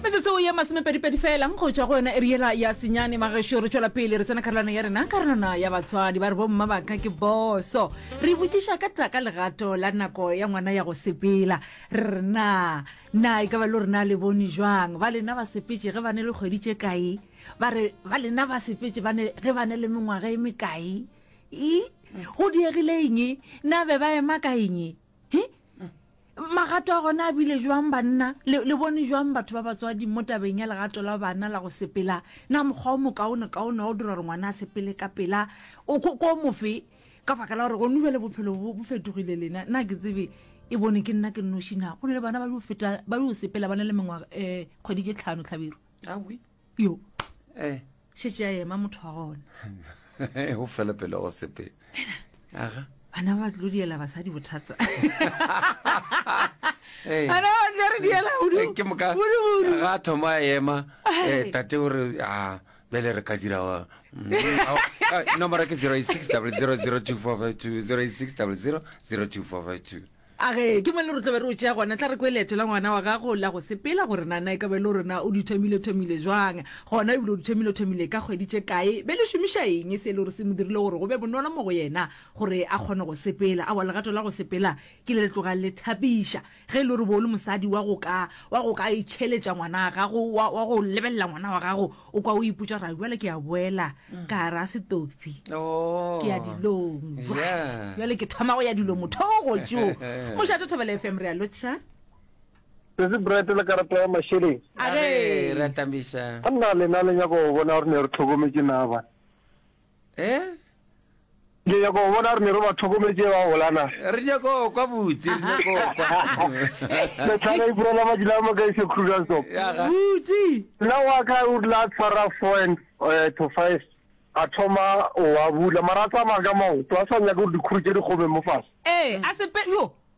metsotso ye masomepedipedi fela go tšwa go yona e riela ya senyane magešo re tšwela pele re tsena karolwana ya rena karolwana ya batswadi ba re bomma ba ka ke boso re botšiša ka taka legato la nako ya ngwana ya go sepela re re na na e ka ba le rena le bone jwang ba lena ba sepetse ge ba ne le kgwedi tše kae ba re ba lena ba sepetse ba ne- ge ba ne le mengwaga e mekae e go diegile eng na be ba ema ka eng he magato a gona a bile jwang banna le, le bone jwang batho ba batswadi mo tabeng ya legato la bana la go sepela na mokgwa o mokaone kaone wa go dira gore ngwana a sepele ka pela o ko ko mofe ka baka la gore gone jale bophelo bo bo fetogile lena na ke tsebe e bone ke nna ke nnoši na go ne le bana ba dio feta ba dio sepela ba ne le mengwaga um kgwedi tše tlhano tlhabiro awi yo eh šetše a ema motho wa gona o fele pele go sepele aga bana ba tlo diela basadi bothata Eh. bana ba tlo re diela Eh, hudu ke moka hudu hudu ga a thoma a ema eh, Ai. tate o re a bjale re ka dira wa- Mm, ao- ah, nomoro ke 086 002452 086 002452 A ge ke mo le re tlo be re o tšea gona, tla re kwe leeto la ngwana wa gago la go sepela gore na na e ka be le rena o di thomile-thomile jwang, gona ebile o di thomile-thomile ka kgwedi tše kae, be le šomiša eng se e le gore se mo dirile gore go be bonolo mo go yena gore a kgone go sepela. Aowa, legato la go sepela ke le le tlogang le thapiša. Ge e le gore bo o le mosadi wa go ka wa go ka itšheletša ngwana wa gago, wa wa go lebelela ngwana wa gago, O kwa o ipotša ra bjale ke a boela ka gare a setophi Oh. ke ya dilong jwale Yeah. bjale ke thoma go ya dilong motho o gotšo mošate thobele fm re a lotšha se se bright le karata ya mašeleng a Age, re re a tamiša a nna lena le nyaka go bona gore ne re tlhokometse naba Eh? Ke nyaka go bona re ne re ba tlhokometse ba gola na. Re nyaka go kwa buti, re nyaka go kwa. Metlhana e purela ba dila mo kaise Kruger Stop. Buti. Nna wa ka o la tshwara 4 and eh, to 5 a thoma wa bula mara a tsamaya ka maoto a sa nyaka gore dikhuru tse di kgome mo fase. Eh, a sepe yo.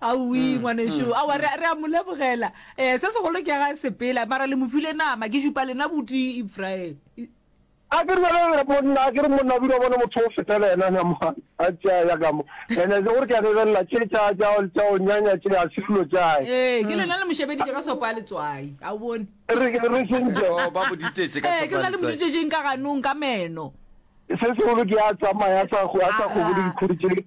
Aowi ngwanešu, aowa re, re a mo lebogela. Eh, se segolo ke ga sepela, mara le mo file nama, ke šupa lena buti Ifraele. A ke re bjale re monna, a ke re monna o bile wa bona motho o feta le yena nama, a tšea ya ka mo. Ene se gore ke a lebelela, tše tša, tša, tša go nyanya tše, ga se dilo tšae. Ee, ke lena le mo šebeditše ka sopo ya letswai, a o bone. Re, re sentše. Oh, ba mo ditetše ka sopo ya letswai. Ee, ke lena le mo ditetšeng ka ganong, ka meno. Se segolo ke a tsamaya, a sa, a sa kgobole dikhuri tše.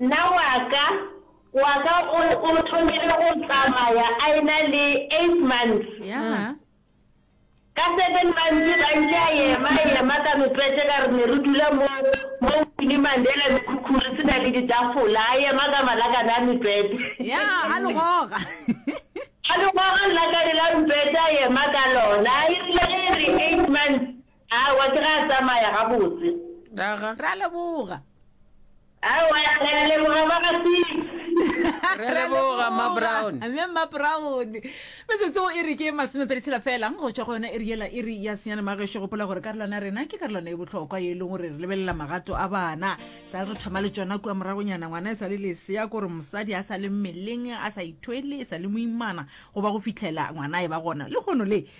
Nna wa ka, wa ka o, o thomile go tsamaya a ena le eight months. Yaga. Ka seven months ba ntše a ema, a ema ka mepete ka re ne re dula mo, mo Winnie Mandela mekhukhu re se na le ditafola, a ema ka malakane a mepete. Ya, a le goga. A le goga lelakane la mepete a ema ka lona. E rile ge e re eight months, Aowa, ke ge a tsamaya gabotse. Aga. Re a leboga. Aowa, re a leboga ba ga Six. Re a leboga, Mma Brown. Mme Mma Brown. Metsotso e re ke masomepedi tshela fela go tšwa go yona iri yela iri ya senyane. Mma gešo, gopola gore karolwana ya rena ke karolwana e bohlokwa ye e leng gore re lebelela magato a bana. Sa le re thoma le tšona kua moragonyana, ngwana e sa le lesea, ke gore mosadi a sa le mmeleng, a sa ithwele, e sa le moimana, go ba go fihlela ngwana a e ba gona lehono le.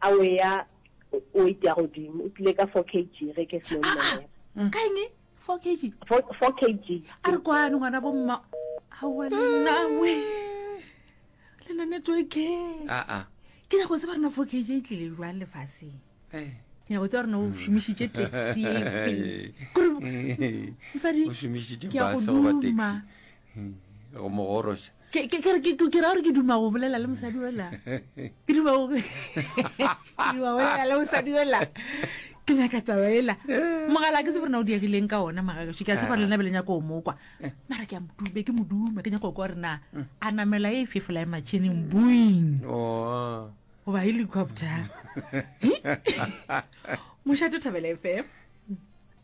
A o eya weight ya godimo, o tlile ka 4 kg ge ke seno mmelela. Ka eng? 4 kg? 4, 4 kg. A re kwano ngwana bo mma. Aowa le nna we. Le nna network. A a. Ke ya go tseba rena 4 kg e tlile jwang lefaseng. Eh. Ke ya go tseba rena o šomišitše taxi e fe. Kore mosadi ke ya go duma. Go mogorosha. Ke, ke, ke, ke, ke ra gore ke duma go bolela le mosadi ola ke duma go ke duma go bolela le mosadi ola ke nyaka taba ela mogala ke se borena o diegileng ka ona magagaso ke a tshepa lena be le nyako o mokwa mara ke a modube ke moduma ke nyako kwa gore na a namela e fefola e matšhineng boing oh. goba helicopter mošate thabela fm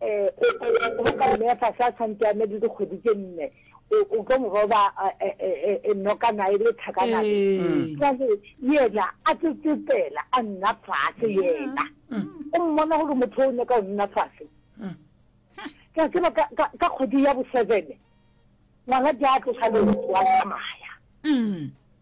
O tla ya go roka mme a fase a santse a na le dikgwedi tse nne, o o tlo mo roba a, e, e, e, e nokana e le thakana le. Ee. Jwale yena a tlo tsetsela a nna fase yena. O mmona gore motho o nyaka go nna fase. Ke a tseba ka, ka, ka kgwedi ya bo seven, ngwana di a tlosa leoto a tsamaya.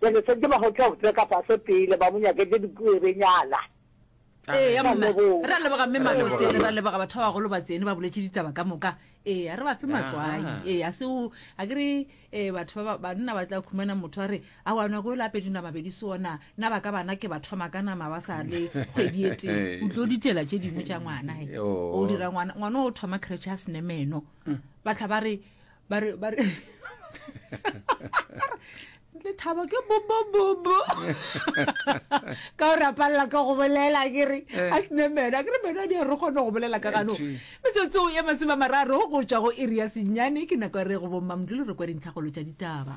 Ke re setse ba hotla go tseka fase pele ba mo nyaketše dipuebenyana. Eya mma Leboga. re a leboga mme Re a leboga, malosele re a mme. leboga batho ba bagolo ba tsene ba boletše ditaba ka moka ee a re ba fe Ya. matswai ee a seo a ke re um batho ba ba- banna ba tla khumana motho a re a wa nako e le apedi nama bedi sona na ba ka bana ke ba thoma ka nama ba sa le kgwedi e tee o tlo ditšela tše dingwe tša ngwana he Yoo. o dira ngwana ngwana o thoma kretšhe a senemeno ba tla ba re Bare, bare. le thaba ke bobobobo ka gore a palela ka go bolela ke re eh. a sene mena ke re mena di re kgone go bolela ka gano metsotso ya maseba mararo go tswa go iri ya senyane ke nako ya re go bommamodulo re kwa dintlhagolo tša ditaba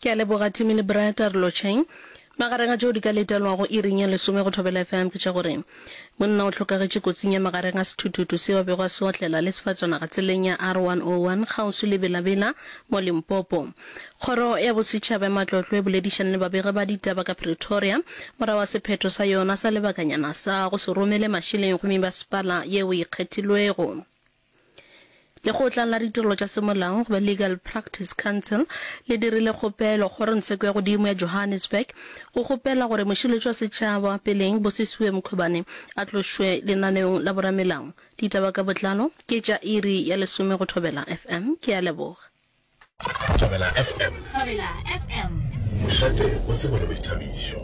Ke a leboga Timmy le Bra Tarlocheng. Magareng a tšeo di ka letelwago iring ya lesome go Thobela FM ke tša gore, Monna o hlokagetše kotsing ya magareng a sethuthutu seo a bego a se otlela le sefatšanaga tseleng ya R101 kgauswi le Bela-Bela mo Limpopo. Kgoro ya Bosetšhaba ya Matlotlo e boledišane le babegi ba ditaba ka Pretoria morago ga sephetho sa yona sa lebakanyana sa go se romele mašeleng go mebasepala yeo e ikgethilwego. Lekgotla la Ditirelo tša Semolao goba Legal Practice Council le dirile kgopelo Kgorongsheko ya Godimo ya Johannesburg go kgopela gore Mošireletši wa Setšhaba pele Bosisiwe Mkhwebane a tlošwe lenaneong la boramelao. Ditaba ka botlalo ke tša iri ya lesome go thobela. FM, ke a leboga. Thobela FM. Thobela FM. Mošate o tsebo le boithabišo.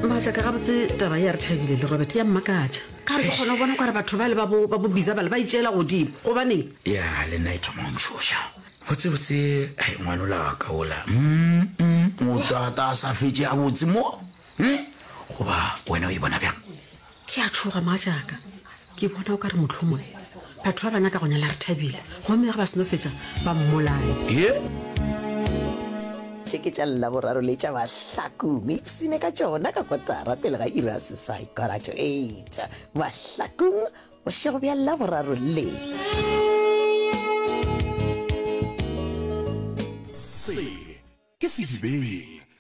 batla ka gabotse taba ya re thabile le robert ya mmakatša ka re ke kgone go bona kware batho ba le ba bobiza bale ba itšeela godimo gobaneng ya le nna e thoma go ntšhoša Botsebotse hai ngwanola wa ka ola mm o tata a sa fetše a botse mo eh? goba wena o e bona bjang ke a tšhoga maa jaaka ke bona o ka re motlhomo batho ba bana ka go nyala re thabile gomme ge ba seno fetša ba mmolae ye tše ke tša lla boraro le tša bahlakong ipsine ka tšona ka kotara pele ga ira sesai kora to eight bahlakong Bošego bja Laboraro le. Se ke sedibeng